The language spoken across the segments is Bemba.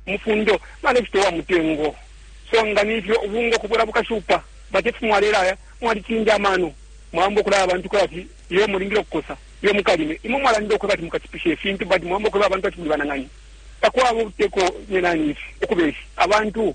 mufundo balecita uwa mutengo so nga ni fyo ubunga ukubwela bukashupa but if mwalelaya mwalicinja amano mwaamba ukulaya abantu kweba ati iyo mulingile ukukosa iyo mukalime imwe mwalandile ukweba ati mukachipusha ifintu but mwaamba ukweba abantu ati muli banang'ani takwaba ubuteko nyenani ifi ukubeshi abantu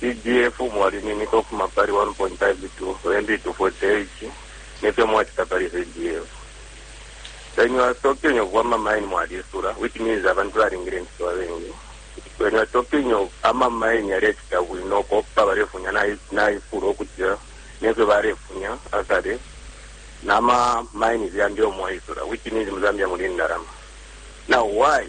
CDF mwalininika ukufuma pali 1.52 MB to 48 nefyo mwacita pali CDF when you are talking of ama mine mwalisula which means abantu balingile incito abengi when you are talking of ama mine yalecita bwino kopa balefunya naifula ukutila nefyo balefunya akale nama mine yambi omwaisula which means mu Zambia muli indalama now why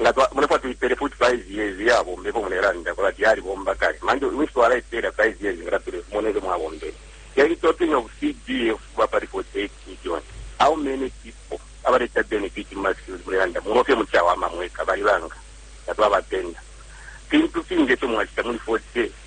Nga twa mulefwa tuipele futi 5 years iya bomba ifyo mulelanda kwebati yalibomba kale manje wishi twalaipela 5 years nga tatule mona ifyo mwabombele then talking of CDF ba pali 48 billion how many people abaleta benefit muma skills mulelanda mumo fye muchawama mweka bali banga nga twaba penda fintu fingi efyo mwachita muli 40